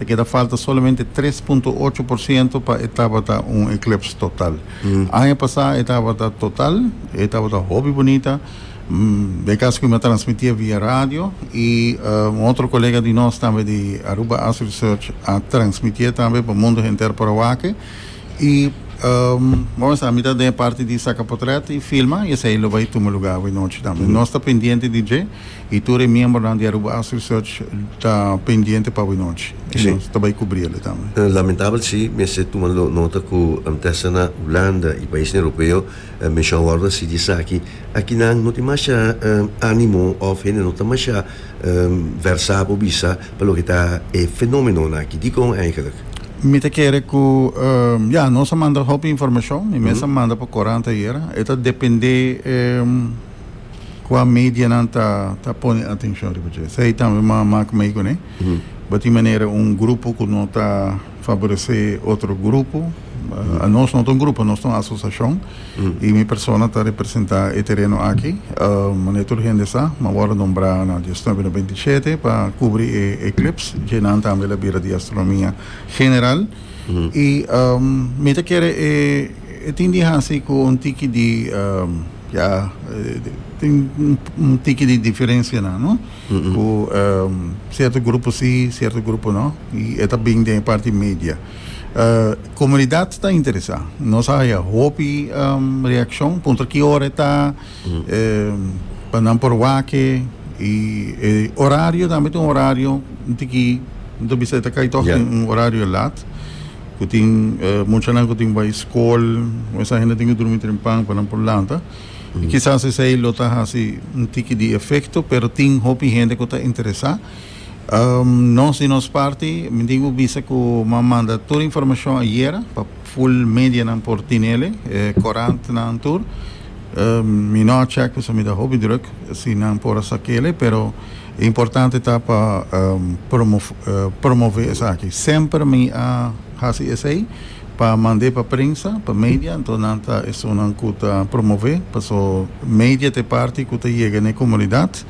Ta keda falta solamente tres punto ocho por ciento pa e tabata un eclipse total. Aña pasá e tabata total, e tabata hopi bunita. Mm, e caso cu mi a transmitia via radio y un otro colega di nos tambe di Aruba Astro Research a transmitia tambe pa mundo henter por a wake. Y, um, bo a mesta mi ta den e parti di saca potret y filma y esey lo bay tuma lugar awe nochi tambe. Nos ta pendiente di dje. y tur e miembronan di Aruba House Research ta pendiente pa awe nochi, y nos ta bay cubri el'e tambe. Lamentabel si, mester tuma nota cu Antessana, Hulanda y paisnan Europeo menshon wordo así di esaki, akinan no tin masha animo of hende no ta masha versa pa bisa pa loke ta e fenomenonan aki. Dicon eigenlijk? Mi ta kere cu, ya, nos a manda hopi informacion, mi mes a manda pa corant ayer, e ta depende. kua medianan ta ta pone atencion riba dje. Esei tambe ma mak mei kuné. Batin manera un grupo ku no ta favorece otro grupo. Uh, a nos no ta un grupo, nos ta un asociacion. I mi persona ta representa e tereno aki. Uh, mane tur hende sa, ma wòrdu nombrá na diasnuebe, na beintisete pa kubri e e clubs. Djenan tambe la bira di astronomia general. Y mi ta kere e tin di hasi cu un tiki di, ya, tin un tiki di diferencia nan, no? Cu cierto grupo si, cierto grupo no, y e ta bin den e parti media. Comunidad ta interesa, nos a haya hopi reaccion, puntra ki ora e ta. pa nan por wake y e horario tambe ta un horario un tiki no ta bisa e ta cay toch tin un horario lat cu tin muchanan cu tin bay school mesa hende tin cu drumi trempan pa nan por lanta y kisas esey lo ta haci un tiki di efecto pero tin hopi hende cu ta interesa Nos di nos parti mi tin ku bisa ku m'a manda tur informashon ayera pa ful medianan por tinele, e korantnan tur. Mi no a chèk pasobra mi ta hopi drùk si nan por a sa kele, pero e importante ta pa promové esaki. Semper mi a hasi esei pa mand'é pa prensa, pa media, anto nan ta esunnan ku ta promové, paso media ta e parti ku ta yega n'e komunidat.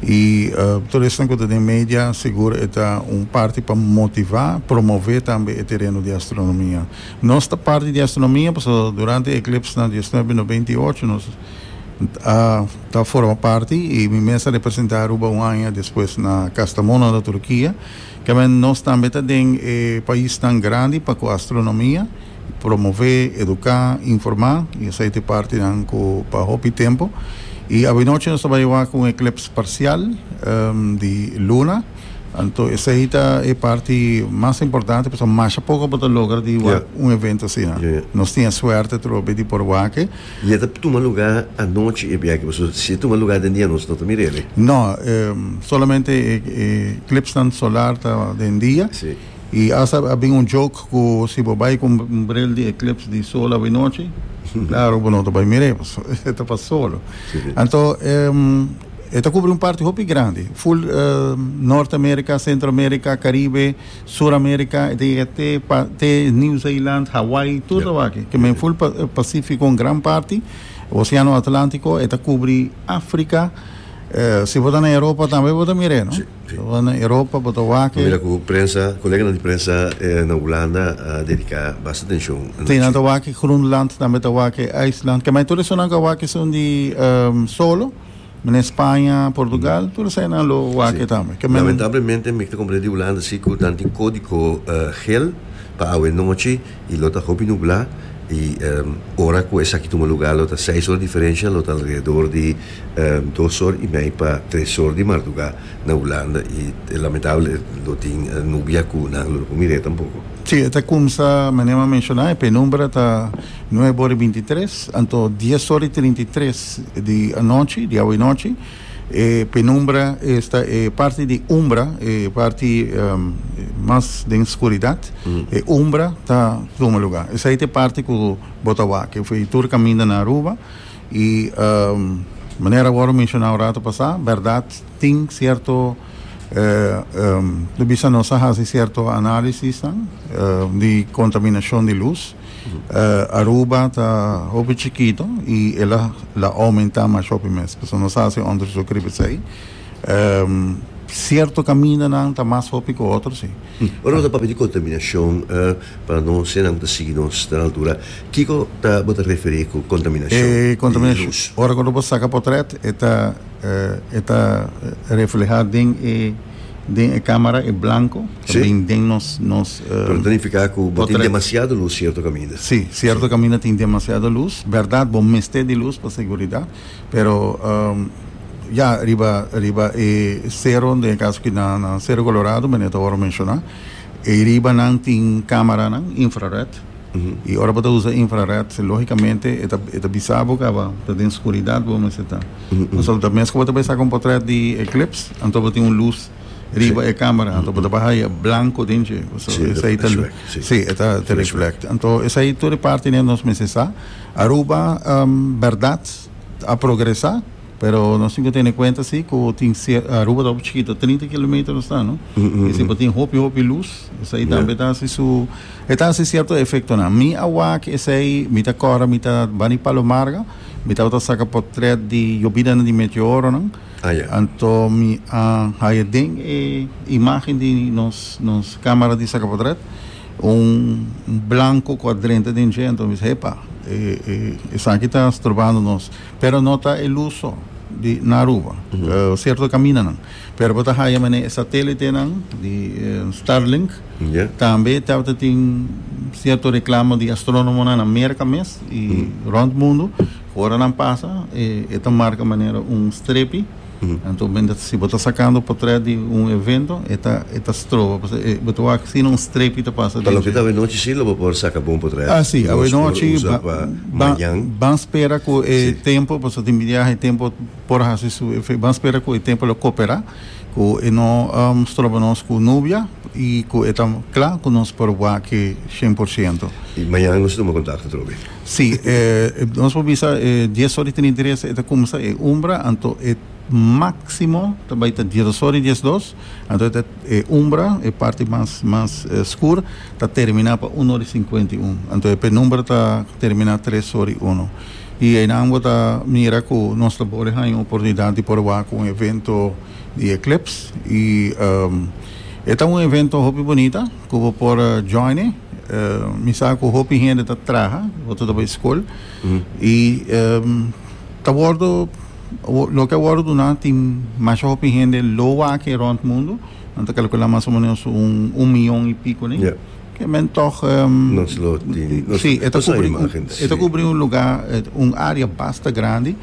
Y tur esnan cu ta den media sigur e ta un parti pa motiva, promove tambe e tereno di astronomia. Nos ta parti di astronomia pasobra so durante e eclipse na diecinueve no binti y ocho nos a ta forma parti y mi mes a representa Aruba un aña despues na Kastamonu na Turkia. Kember nos tambe ta den e paisnan grandi pa cu astronomia. Promové, eduká, informá, i esei ta e partinan ku pa hopi tempu. I awinochi nos ta bai wak un eklips parsial di luna, anto esei ta e parti mas importante pasobra masha poko bo ta logra di wak un evento asina. Nos tin e suerte atrobe di por wak e. I e ta tuma lugá anochi e biaha pasobra si e tuma lugá den dia nos no ta mira el. Nò, solamente e eklipsnan solar ta den dia. Y hasta a bin un joke cu si bo bay cu un bril di eclipse di sol awe nochi, claro bo no ta bay mir'e paso e ta pa solo. Anto e ta cubri un parti hopi grandi, full Norte America, Centro America, Caribe, Sur America, e ta yega te pa te New Zealand, Hawaii, tur tabaki, ke men full Pacifico un gran parti, Oceano Atlantico, e ta cubri Africa, si bo ta na Europa tambe bo ta mir'e no. Bo na Europa bo ta wak e. Bo mira ku prensa, koleganan di prensa na Hulanda a dediká basta atenshon. Si, nan ta wak e Groenland, tambe ta wak e IJsland. Ke mai tur esunnan ku a wak esun di solo, menen Spaña, Portugal, tur esei nan lo wak e tambe. Ke men. Lamentablemente mi ta komprende di Hulanda si ku nan tin kódiko gel pa awe nochi Y lo ta hopi nublá y ora cu esaki tuma lugá lo ta seis ora diferencia, lo ta alrededor di dos or y mei pa tres or di mardugá na Hulanda y lamentable lo tin nubia cu nan lo por mir'é tampoco. Sí, e ta cumsa, meneer Mah a menciona, e penumbra ta nuebe ora y binti tres, anto dies ora y trinta y tres di anochi, di awe nochi. E penumbra esta e parti di umbra, e parti mas den skuridat. E umbra ta tuma lugá. Esei ta e parti ku bo ta wak. Efo i tur kaminda na Aruba. I manera wòrdu menshoná un ratu pasá, bèrdat tin sierto lo bisa nos a hasi sierto análisisnan di kontaminashon di lus. Aruba ta hopi chikito i el a la aumentá mas hopi mes. Paso nos hasi onderzoek riba esei. Um, sierto kamindanan ta mas hopi ku otro, si. Ora ta papia di kontaminashon, pa no se nan ta sigui nos den altura, kiko ta bo ta referí ku kontaminashon di lus? Ora ku lo bo saka potret e ta e ta reflehá den e. den e camera e blanco ta Sí. bin den nos nos eh, Pero ta nifica cu bo tin portret. demasiado luz cierto caminda. Sí, cierto caminda tin demasiado luz. Berdad bo mester di luz pa seguridad, pero ehm, ya riba riba e cerro den e caso aki na na Cerro Colorado meneer ta worde menciona, e ribanan tin cameranan infrared. Y ora bo ta usa infrared, logicamente e ta bisa bo caba ta den scuridad bo mester ta. Pasobra ta mes cu bo ta bay saca un portret di eclipse, anto bo tin un luz riba e camera, anto bo ta bay haya blanco den dje. Sí, e ta reflect. Anto esai tur e parti ne nos mester sa. Aruba, berdad, a progresa, pero nos tin cu tene cuenta si cu tin Aruba ta hopi chikito, trinta kilometer nos ta, no? Y si bo tin hopi, hopi luz, esai tambe ta haci su. E ta hasi cierto efectonan. Mi a wak esey, mi ta cora, mi ta bani Palomarga, mi tabata saca portret di yobidanan di meteoronan, anto mi a haya den e imagen di nos nos camera di saca portret un blanco cu a drenta den dje, anto mi bisa epa e e esaki ta storbando nos, pero no ta e luz so di na Aruba, cierto caminanan, pero bo ta haya mane e satelitenan di Starlink. Tambe tabata tin cierto reclamo di astronomonan na Merca mes y rond mundo cu ora nan pasa e ta marca manera un strepi anto si bo ta sacando potret di un evento e ta e ta stroba pasobra e bo ta wak asina un strepi ta pasa dentro. Pa loke ta awe nochi si lo bo por saca bon potret Asi awe nochi ban spera cu e tempo pasobra tin biaha e tempo por hasi su efecto ban spera cu e tempo lo copera. Ku e no stroba nos ku nubia i ku e ta kla ku nos por wak aki shen por siento. I mañana nos ta tuma kontakto atrobe. Si, nos por bisa e dies ora i trinta i tres e ta kumsa e umbra, anto e máksimo ta bai ta diesdos ora i diesdos. Anto e umbra, e parti mas mas skur, ta terminá pa un ora i sinkuenta i un. Anto e penumbra ta terminá tres ora i uno. I einan bo ta mira ku nos ta por haña un oportunidat di proba ku un evento di Eclipse. I e ta un evento hopi bunita ku bo por join e. Mi sa ku hopi hende ta traha, otro ta bai skol. I ta wordu, loke a wordu duna tin masha hopi hende lo wak e rònt mundu. Nan ta kalkulá mas o menos un miyon i piko alei. Ke men tòg Nos lo tin nos si e ta nos a kubri imagen un e ta si kubri un lugá un área basta grandi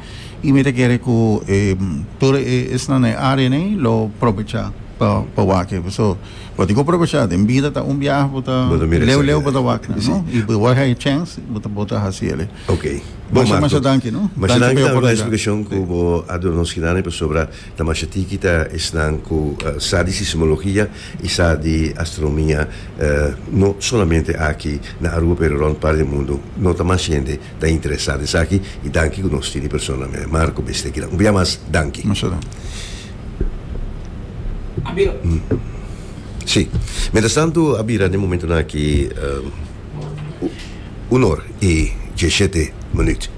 i mi ta kere ku e tur e esnan na e área nei lo probechá pa pa wak ebe so bo tin ku probechá den bida ta un biaha bo ta bo ta mira leu esaki leu bo ta wak nan si no i bo wak hai chèns bo ta bo ta hasi ele okay bon masha Marco masha danki no masha danki danki p'e tambe p'e oportunidad splikashon ku si bo a duna nos hinane pasobra. Ta masha tiki ta esnan ku sa di sismologia i sa di astronomia, no solamente aki na Aruba pero rònt parti di mundu. No ta masha hende ta interesá ta esaki i danki ku nos tin e persona mester Marco Bester kinan. Un bia mas danki. Masha danki. Si. Mientras tanto a bira den momentonan aki. Un or i diesshete minüt.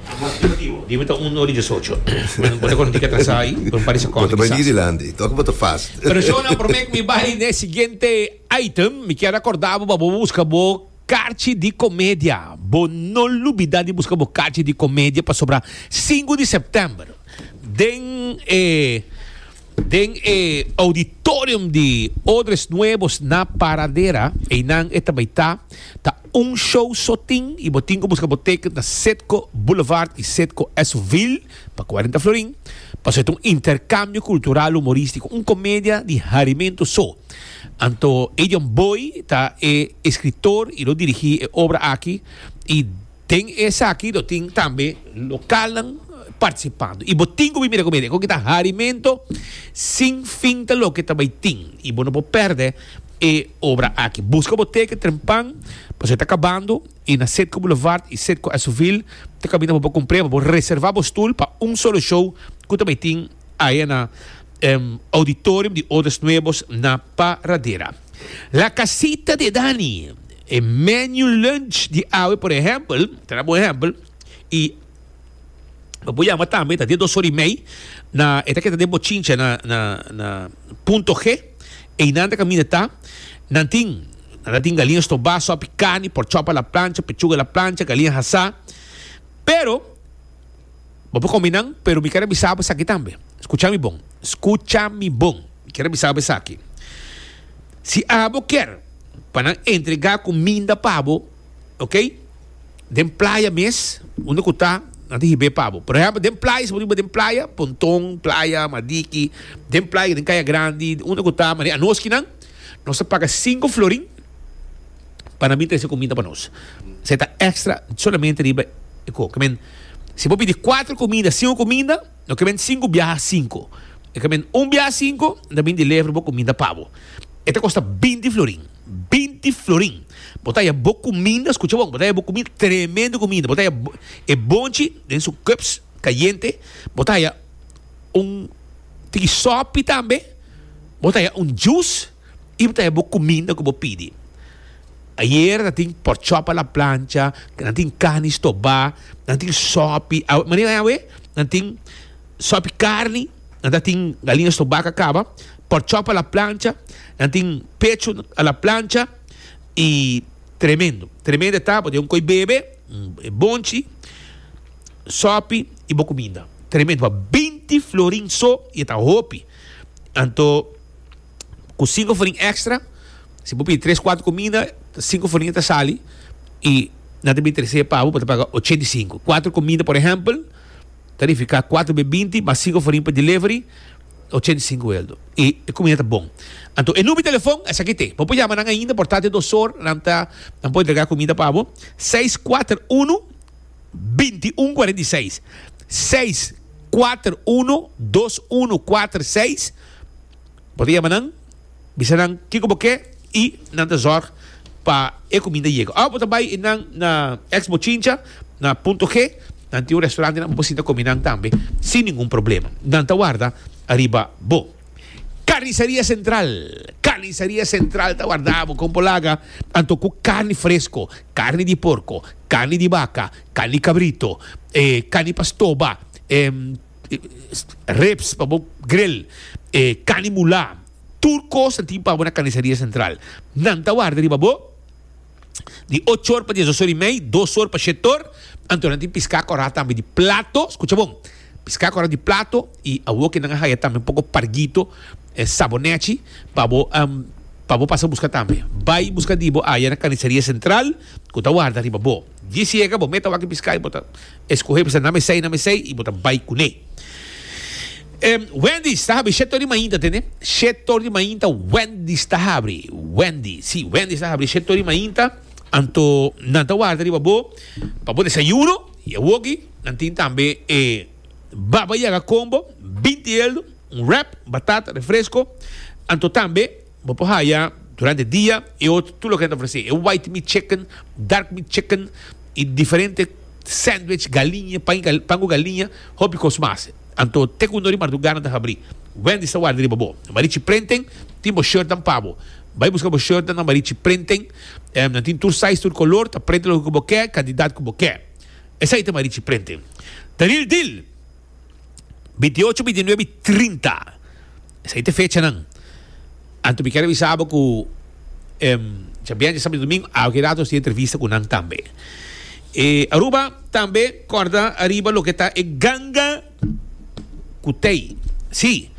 Di mi ta un or i diesocho. Bueno, bo ta konta tika ta sa ei, pero mi paresa konta ki sa sa. Tok bo ta fast. Persona promé ku mi bai n'e siguiente item, mi kier akorda bo pa bo buska bo karchi di komedia. Bo no lubida di buska bo karchi di komedia pasobra sinku di sèptèmber den e. Den e Auditorium di Odres Nuevos na Paradera, einan e ta bai ta, ta un show so tin y bo tin cu busca bo ticket na Citgo Boulevard y Citgo Esuville pa cuarenta florin. Pasobra e ta un intercambio cultural humoristico, un comedia di harimento so. Anto Adrian Boy ta e escritor y lo dirigi e obra aki y. Den esaki lo tin tambe lokalnan partisipando y bo tin cu bai mira cu mira e con ki ta harimento sin fin ta loke ta bai tin y bo no por perde e obra aki. Busca bo teken trempan pasobra e ta cabando y na Setco Boulevard y Setco Esovil ta caminda bo pa cumpre bo por reserva bo stoel pa un solo show cu ta bai tin aya na Auditorium di Odas Nuevos na Paradera. La Casita de Dani, e menu lunch di awe por ehempel, ta na bon ehempel, i bo por yama tambe, ta den dos ora i mei, na, e ta keda den Bochincha, na, na, na Punto G, ei nan ta kaminda ta, nan tin, nan ta tin galiña stobá, sòpi carni, porchòp a la plancha, pechuga a la plancha, galiña hasá, pero. Bo por komi nan, pero mi ker a bisa bo esaki tambe. Skucha mi bon. Skucha mi bon. Mi ker a bisa bo esaki. Si abo ker pa nan entregá kuminda pa bo, oke, den playa mes, unda ku ta, nan ta hib'é pa bo. Por ehèmpel, den playa, si bo riba den playa, Ponton, playa, Madiki, den playa, den Kaya Grandi, unda ku ta, mane, anoski nan. Nos ta paga sinku florin pa nan bin trese kumida pa nos. Esei ta èkstra solamente riba e ku. Kemen, si bo pidi kuater kumida, sinku kumida, lo kemen sinku biaha sinku. E kemen un biaha sinku, nan ta bin deliver bo kumida pa bo. E ta kosta binti florin. Binti florin! Bo ta haya bo kumida, skucha bon, bo ta haya bo kumida, tremendo kumida. Bo ta haya e bonchi den su cups kayente. Bo ta haya un tiki sòpi tambe. Bo ta haya un jus y bo ta haya bo cuminda cu bo pidi. Ayer nan tin pork chop a la plancha, nan tin carni stoba, nan tin sopi. Manera ay awe nan tin sopi carni, nan ta tin galiña stoba ca caba, pork chop a la plancha, nan tin pechu a la plancha y tremendo. Tremendo ta bo ta haya un coy bebe, e bonchi, sopi y bo cuminda. Tremendo. Pa binti florin so y e ta hopi. Anto ku sinku foriña extra si bo pidi tres kuater komida ta sinku foriña ta sali i nan ta bin tres'é pa bo bo ta paga ochenta i sinku kuater komida por ehèmpel ta nifiká kuater be binti mas sinku foriña pa delivery ochenta i sinku eldo i e komida ta bon anto e number di telefòn esaki te bo por yama nan ainda por ta te dos or nan ta nan por entrega komida pa bo seis kuater unu. binti un kuarenta i seis, seis kuater unu dos unu kuater seis, bo ta yama nan bisa nan kiko bo ke i nan ta zorg pa e kuminda yega òf bo ta bai nan na Expo Chincha na Punto G nan tin un restaurante nan bo por sinta komi nan tambe sin ningun problema nan ta warda ariba bo. Carniceria Central. Carniceria Central ta wardá bo kon bo laga anto ku karni fresko, karni di porko, karni di baka, karni kabrito, e karni pa stoba, e ribs pa bo grill, e karni mulá. Tur kos ta tin pa bo na Carniceria Central. Nan ta warda riba bo. di ocho or pa dies dos or i mei, dos or pa shet or, anto nan tin piská kòrá tambe di plato, skucha bon, piská kòrá di plato i awo ke nan a haya tambe un poko pargito, e sabo nèchi, pa bo pa bo pasa buska tambe. Bai buska di bo aya na Kaniseria Sentral ku ta warda riba bo. Disiega bo meta wak e piská i bo ta. Escoge bisa name esey, name esey y bo ta bay cune. Wendy's ta habri shet tor di mainta, tene? Shet tor di mainta Wendy's ta habri. Wendy, si, Wendy's ta habri shet tor di mainta. Anto nan ta warda riba bo pa bo desayuno y awoki nan tin tambe e Baba Yaga Combo, binti eldo, un wrap, batata, refresco. Anto tambe. Bo por haya durante dia e otro tur loke nan ta ofrece e white meat chicken, dark meat chicken y diferente sandwich, galiña, pan cu galiña, hopi cos mas. Anto te cu un or di mardugada nan ta habri. Wendy's ta warda riba bo. Nan marichi prenten, tin bo shirtnan pa bo. Bay busca bo shirtnan na marichi prenten. Nan tin tur size, tur color, ta prente loke cu bo ke, cantidad cu bo ke. Esay ta marichi prenten. Ta real deal! Bintiocho, bintinuebe i trinta. Esei ta e fechanan. Anto mi ke revisa bo ku djabianchi di sabado i domingo a hopi rato nos tin entrevista ku nan tambe. E Aruba tambe kòrda ariba loke ta e ganga ku tei. Si,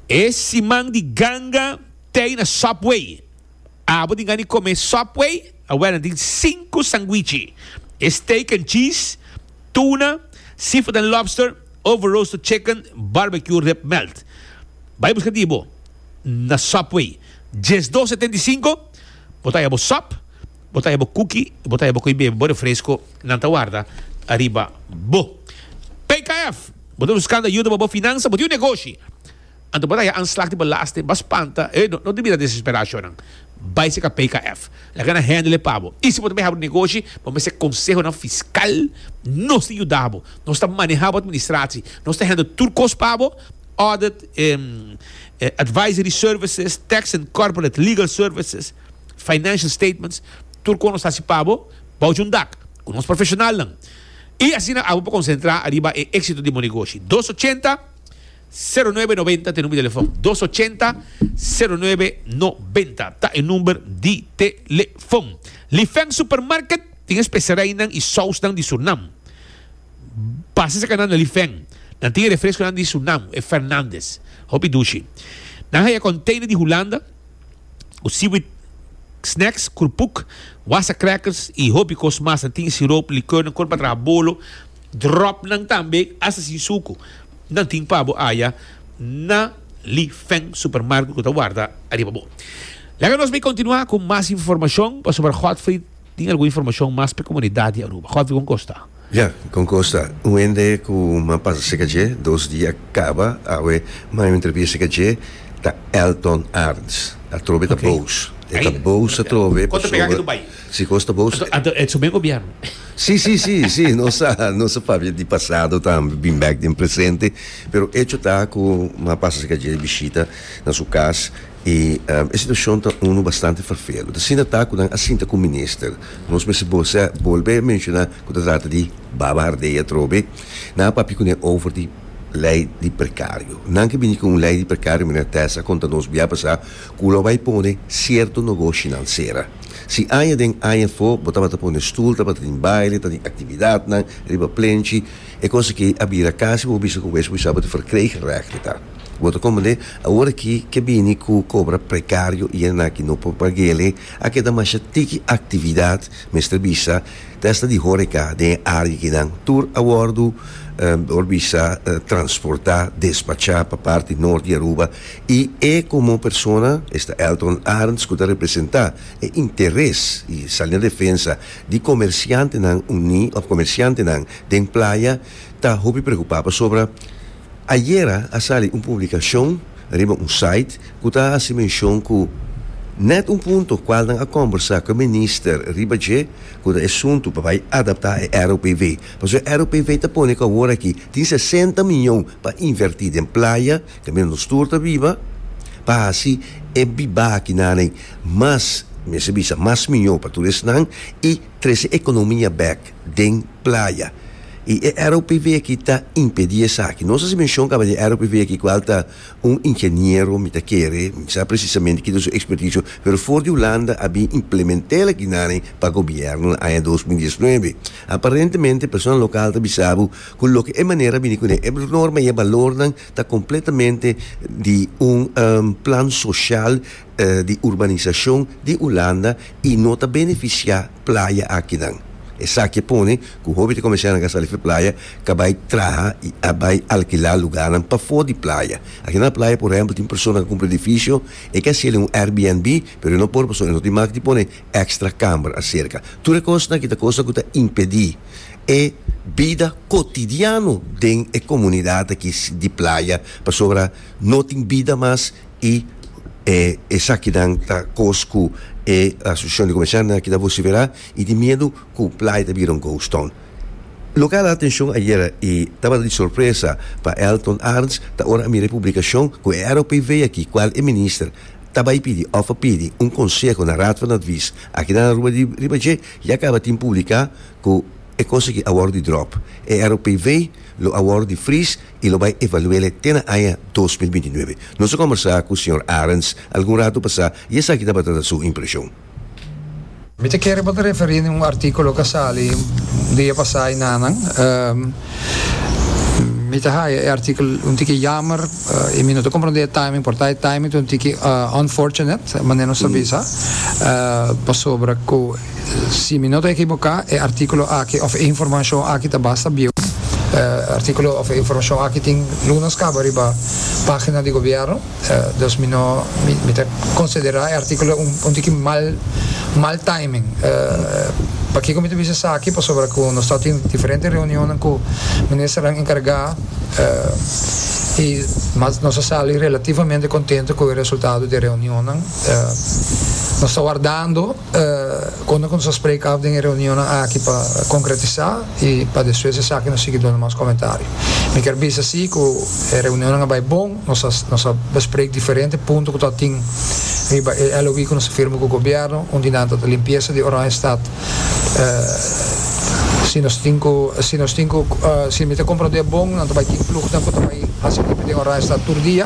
e siman di ganga, tei na Subway. Abo tin gana di come Subway? Awel, nan tin cinco sanguichi, e steak and cheese, tuna, seafood and lobster, over roasted chicken, barbecue rib melt. Bay busca di bo na Subway. Diesdos setenta y cinco, bo ta haya bo sub, bo ta haya bo cookie y bo ta haya bo cu y bebe bo refresco. Nan ta warda ariba bo. PKF, Bo ta buscando ayuda pa bo finansa? Bo tin un negoshi? Anto bo ta haña anslag di belasting, bo a spanta, eh, no, no ta mira desesperá ashonan. Bai seka PKF. Laga nan hèndel e pa bo. I si bo ta mihá bo negoshi, bo mester konsehonan fiskal. Nos ta yuda bo. Nos ta manehá bo atministrasi. Nos ta hèndel tur kos pa bo, audit, eh, advisory services, tax and corporate legal services, financial statements, tur kos nos ta hasi pa bo, bouch un dak, ku nos profeshonalnan. I asina abo por konsentrá ariba e éksito di bo negoshi. Dos ochenta. Sero nuebe nobenta ta e number di telefòn. Dos ochenta, sero nuebe nobenta ta e number di telefòn. Lifeng Supermarket tin e specerijnan i sousnan di Surnam. Pasa esaki nan na Lifeng. Nan tin e refresconan di Surnam, e Fernandes. Hopi dushi. Nan haya container di Hulanda cu seaweed snacks, kurpuk, wassa crackers i hopi cos mas. Nan tin siroop, likörnan, cor pa traha bolo, dropnan tambe, hasta sin sucu. Nan tin pa bo aya na Li Feng Supermarket ku ta warda ariba bo. Laga nos bai kontinuá ku mas informashon pasobra Godfrey tin algun informashon mas pa e komunidat di Aruba. Godfrey, kon kosta? Ya, kon kosta? Un hende ku m'a pasa serka dje dos dia kaba awe m'a entrevista serka dje ta Elton Arns. Atrobe ta bous. E ta bous atrobe pasobra Si kosta bo usted. Anto e sume gobierno. Si si si si nos sa nos sa papia di pasado tambe bin bek den presente pero echo ta ku m'a pasa serka dje bishita na su kas i e situashon ta unu bastante ferfelu asina ta ku nan a sinta ku minister nos mester bos'e bolbe menshoná ku ta trata di baba hardei atrobe nan a papia kuné over di lei di prekario nan ke bini ku un lei di prekario meneer Tessa a konta nos bia pasá. Cu lo bay pone cierto nogoshinan cera. Si aña den aña fo bo tabata pone stoel tabata tin baile, ta tin actividadnan riba plenchi, e cosa aki a bira casi bo bisa cu bo es wisaba di verkreegrechten ta. Bo ta comprende awor aki ke bini cu cobra precario y esnan aki no por pagele a keda masha tiki actividad, mester bisa, desde di horeca den e area akinan tur a wordo, por bisa, transporta, despacha pa parti Norte y Aruba. I e komo persona, esta Eltron Arntz ku ta representá e interes i sali na defensa di komersiantenan uní òf komersiantenan den playa ta hopi preokupá pasobra ayera a sali un publikashon riba un sait ku ta hasi menshon ku nèt un punto kual nan a kòmbersá ku e minister riba dje ku ta e suntu pa bai adaptá e ROPV pasobra e ROPV ta pone ku awor aki tin sesenta mion pa invertí den playa Te mira nos tur ta biba pa hasi e bibakinanan mas, mester bisa, mas mihó pa tur esnan i trese ekonomia bèk den playa. I e ROPV aki ta impedí esaki. Nos a hasi menshon kaba di e ROPV aki kual ta un ingeniero, mi ta kere, mi sa presisamente ki ta su ekspertisio, pero for di Hulanda a bin implement'el aki nanen pa gobièrnu na aña dos mil diesnuebe. Aparentemente personanan lokal ta bisa bo ku loke e manera a bini kuné e norma i e balornan Ta completamente di un plan social di urbanisacion di Hulanda y no ta beneficia playa akinan. Esaki a pone cu hopi ta comensa nan gasta lef e playa ka bay traha y a bay alkila lugarnan pafo di playa. Aki na playa por ehempel tin persona cu cumpra edificio, e ke haci el en un Airbnb pero e no por pasobra e no tin mak di pone extra camber acerca. Tur e cosnan aki ta cosnan cu ta impedi. e bida cotidiano den e comunidad aki di playa pasobra no tin bida mas y e esakinan ta cos cu e asociacion di comerciantenan aki ta vocifera y tin miedo cu playa ta bira un ghost town. Loke a hala atencion ayer y tabata di sorpresa pa Elton Arns ta ora a mira e publicacion cu e ROPV aki cual e minister ta bay pidi of a pidi un conseho na Raad van Advies aki na Aruba riba dje Y a caba tin publica cu e consequi a worde drop. E ROPV lo a worde fris y lo bay evaluele te na aña dos mil binti nuebe. Nos a combersa cu señor Arends algun rato pasa y esaki tabata ta su impresion. Mi ta kere pa ta referí na un artículo cu a sali dia pasá y nanan. Mi ta haya e artikel un tiki yamer y mi no ta comprende e timing por ta e timing ta un tiki unfortunate manera nos ta bisa pasobra cu si mi no ta ekiboca e artikulo aki of e informacion aki ta basta bieu e artikulo of e informacion aki tin lunas caba riba pagina di gobierno. Dos mi no mi ta considera e articulo un tiki mal mal timing pakico mi ta bisa esaki pasobra cu nos ta tin diferente reunionnan cu ministernan encarga y mas nos a sali relativamente contento cu e resultado di e reunionnan nos ta wardando Konta ku nos a spreka af den e reunionnan aki pa konkretisá i pa despues esaki nos sigui duna mas komentario. Mi kier bisa si ku e reunionnan a bai bon, nos a nos a besprek diferente punto ku ta atin riba e LOI ku nos a firma ku gobièrnu, un di nan ta ta limpiesa di Oranjestad. Si nos tin ku si nos tin ku si mi ta komprondé bon nan ta bai tin plugnan ku ta bai hasi limpio den Oranjestad tur dia.